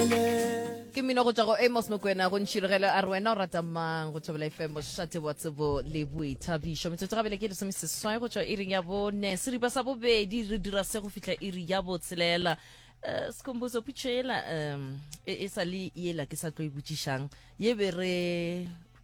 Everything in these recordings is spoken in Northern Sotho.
ke mmino go tswa go amos mokwena go ntšhirogelo a re wena o rata mang go thobela efeng bošate wa tsebo le boithabišo metsotso gabele ke lesome seswai go tswa iring ya bone seripa sa bobedi re dira se go fihla iri ya botshelela um sekhomboso putšo ela um e, e sa le ela ke sa tlo e botšišang ye be re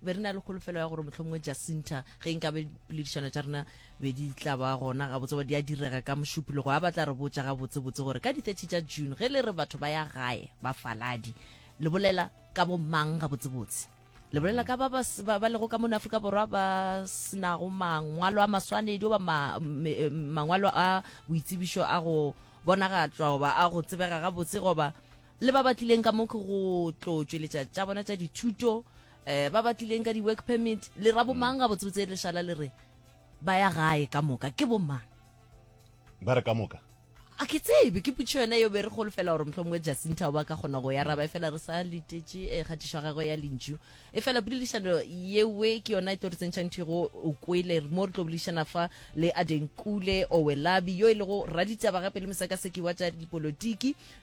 be re na le kgolofelo ya gore mohlomongwe jacinta ge nka be poledišano tša rena be di tla ba gona gabotse gore di a direga ka mošupologo a batla re botša gabotsebotse gore ka di-30 tša june ge le re batho ba ya gae bafaladi le bolela ka bo mang gabotsebotse le bolela ka ba ba s- ba ba lego ka mone aforika borwa ba senago mangwalo a maswanedi goba ma- me- eh, mangwalo a boitsebišo a go bonagatlwa goba a go tsebega gabotse goba le ba ba tlileng ka mo ke go tlo tšweletša tša bona tša dithuto um ba ba tlileng ka di-work permit le ra bomang ga botsebotse lešala le re ba ya gae ka moka ke bomang ba re ka moka a ke tsebe ke putšho yona yo be re golofela gore motlho mongwe jacinta o ba ka kgona go ya raba e fela re sa letetše e kgatišo ya gagwe ya lentšu e fela poledišano yewe ke yona e tlo re tsentšhang thigo o kwele mo re tlo boledišana fa le adenkule owelabi yo e lego raditaba gape le mosekaseki wa tša dipolotiki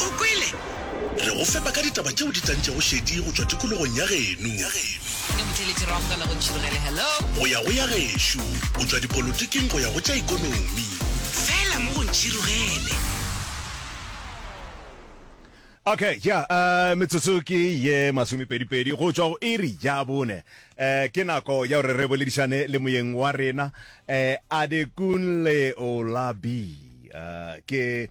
O kwele? Re go fepa ka ditaba tšeo di tlantšego šedi go tšwa tikologong ya geno. Ke motheeletši ra go kgona go tšhirogele. Hello? Go ya go ya gešo, go tšwa dipolotiking go ya go tša ikonomi. Fela mo go ntšhirogele. Okay, ya, uh, metsotso ke ye masomepedipedi go tšwa go iri ya bone. Uh, ke nako ya gore re boledišane le moyeng wa rena, uh, Adekunle Olabi. Uh, ke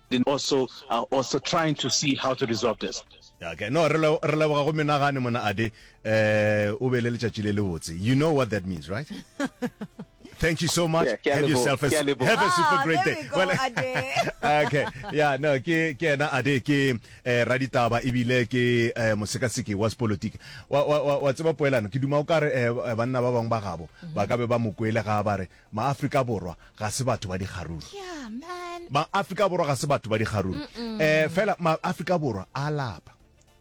Then also are also trying to see how to resolve this. Okay, no, re re leboga go menagane mona ade eh o be le letšatši le le botse. You know what that means, right? Thank you so much. Yeah, have yourself a, have a super ah, great day. Go, well, okay. Yeah, no, ke ke na ade ke eh, raditaba ebile ke eh, mosekaseki wa politiki. Wa wa wa tseba poelano ke duma o kare eh, banna ba bang ba gabo ba ka be ba mokwele ga ba re Maafrika Borwa ga se batho ba dikgaruru. Yeah, man. Maafrika Borwa ga se batho ba dikgaruru. Eh, fela Maafrika Borwa a lapa.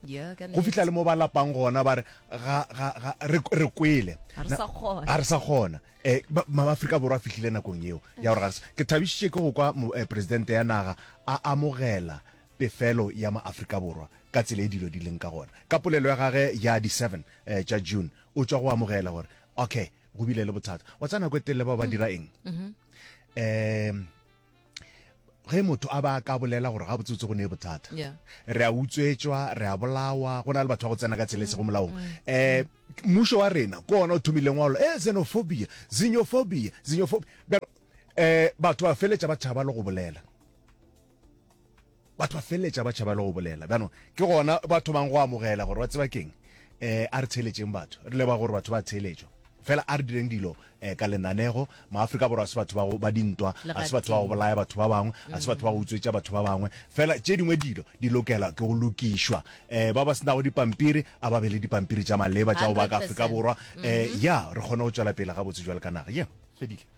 Yeah, ka Go fihla le mo ba lapang gona ba re ga ga ga re re kwele. Ga re Na- sa kgona. ga re sa kgona. Eh, ba- Maafrika Borwa a fihlile nakong eo ya gore ga re sa- ke thabišitše ke go kwa mo- eh, presidente ya naga a amogela pefelo ya Maafrika Borwa ka tsela e dilo di leng ka gona. Ka polelo ya gage ya di 7 eh, tša June o tšwa go amogela gore okay go bile le bothata wa tsa nako e telele bao ba dira eng um ge motho a ba ka bolela gore ga botsotse go ne e bothata re a utswetswa re a bolawa go na le batho ba go tsena ka tsela e sego molaong um mmušo wa rena ke ona o thomileng wa e eh, xenophobia xenophobia xenophobia um batho ba feletša ba thaba le go bolela batho ba feleletša ba tšhaba le go bolela bjanong ke gona ba thomang go amogela gore ba tseba keng um a re tsheletšeng batho re leba gore batho ba tsheletšo fela a re direng dilo um ka lenanego maaforika borwa a se batho ba dintwa a se batho ba go bolaya batho ba bangwe a se batho ba go utswetša batho ba bangwe fela tše dingwe dilo di lokela ke go lokišwa um ba ba senago dipampiri a ba be le dipampiri tša maleba tša go ba ka aforika borwa um ya re kgone go tšwela pele gabotse jwa le ka naga ye fedile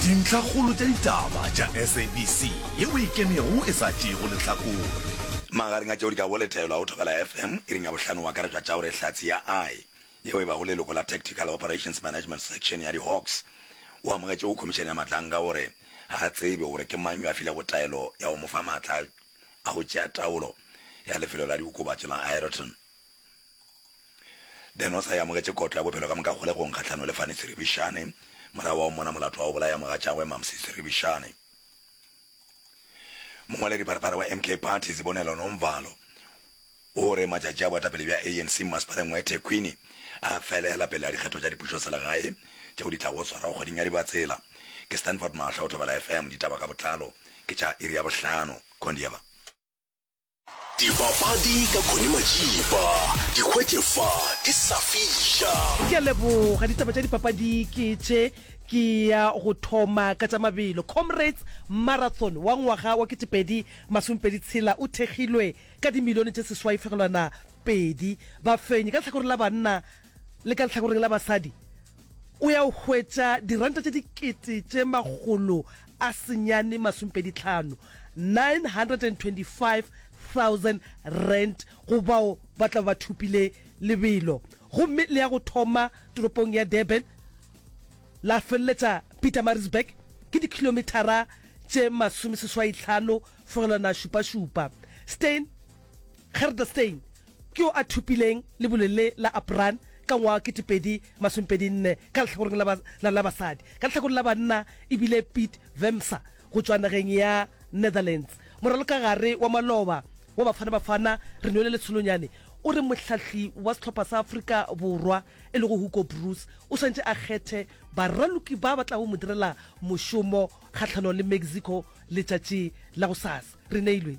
Dintlhakgolo tša ditaba tša SABC ye o e kemego e sa tšeego lehlakore. Magareng a tšeo di ka go letelwa go Thobela FM iring ya bohlano o akaretšwa tša gore Hlatse ya I yeo e bago leloko la Tactical Operations Management Section ya di-Hawks o amogetše go Khomišene ya Matlankga gore ga a tsebe gore ke mang yo a filego taelo ya go mo fa matla a go tšea taolo ya lefelo la diokobatši la Aeroton. Ben o sa e amogetše kotlo ya bophelo ka moka kgolegong kgahlano le Fanny Seribishane morago wa go mmona molato wa go bolaya mogatšagwe Mamsie Seribishane. Mongwaledipharphara wa MK Party Sibonelo Nomvalo o re matšatši a boetapele bja ANC mmasepaleng wa eThekwini a felela pele a dikgetho tša dipušoselegae tšeo di tlago go swarwa kgweding ya Dibatsela. Ke Stanford Mahlo, Thobela FM, ditaba ka botlalo ke tša iri ya bohlano. Kondieva. Dipapadi ka Connie Majiba, di hwetše fa di sa fiša. Ke a leboga. Ditaba tša dipapadi ke tše. Ke ya go thoma ka tša mabelo. Comrades Marathon wa ngwaga wa ketepedi masomepedi tshela o thekgilwe ka dimilione tše seswai fegelwana pedi. Bafenyi ka lehlakoreng la banna le ka lehlakoreng la basadi o ya o hwetša diranta tše dikete tše makgolo a senyane masompedi tlhano, 925,000 rand, go bao ba tla ba thopile lebelo. Gomme le ya go thoma toropong ya Durban la feleletša Pietermaritzburg, ke dikhilomithara tše masomeseswaitlhano fegelwana šupašupa. Steyn. Gerda-Stein ke yo a thopileng lebole le la Apran ka ngwaga wa 2024 ka lehlakoreng la la la basadi. Ka lehlakoreng la banna e bile Piet Wemser go tšwa nageng ya Netherlands. Moralokagare wa maloba wa Bafana Bafana, Renwele Letsholonyane, o re mohlahli wa sehlopha sa Afrika Borwa e lego Hugo Broos o swanetše a kgethe baraloki ba ba tlago mo direla mošomo kgahlano le Mexico letšatši la gosasa. Re neilwe.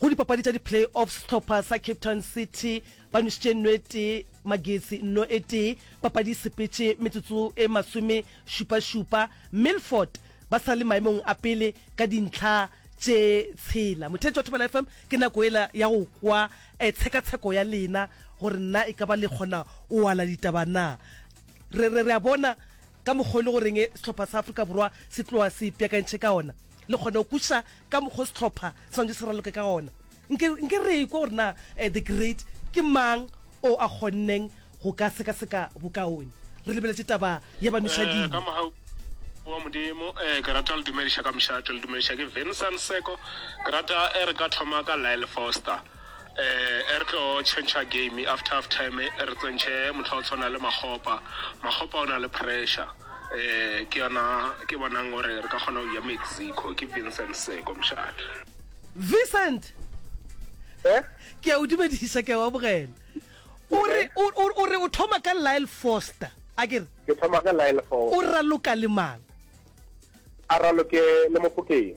Go dipapadi tša di-play-off, sehlopha sa Cape Town City ba nwešitše nno e tee Magesi nno e tee. Papadi e sepetše metsotso e masome šupa-šupa. Milford ba sa le maemong a pele ka dintlha tše tshela. Mothetši wa Thobela FM, ke nako ela ya go kwa eh, tshekatsheko ya lena gore na e ka ba le kgona o ala ditaba na. Re, re, re a bona ka mokgwa o le goreng sehlopha sa Afrika Borwa se tloga se ipeakantšhe ka ona, le kgona go kwešiša ka mokgwa o sehlopha se swanetše se raloke ka ona. Nke, nke re ekwe gore na The Great ke mang o a kgonneng go ka sekaseka bokaone. Re lebeletše taba ya banoša Ee, ka dino. mohau wa Modimo. Ee, ke rata le dumediša ka mošate. Le dumediša ke Vincent Seko. Ke rata e re ka thoma ka Lyle Foster. Eh, e re tlo tšhentšha game after half time, e re tsentšhe motho wa go tshwana le Makgopa. Makgopa o na le pressure. Eh, ke yona ke bonang gore re ka kgona go ya Mexico. Ke Vincent Seko mošate. Vincent! Eh? Ke a o dumedisa, ke a o amogela. O re, o, o, o re o thoma ka Lyle Foster, a ke re? Ke thoma ka Lyle Foster. O raloka le mang? A raloke le Mofokeng.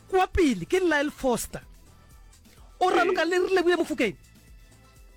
Kwa pele ke Lyle Foster. O raloka le re leboile Mofokeng.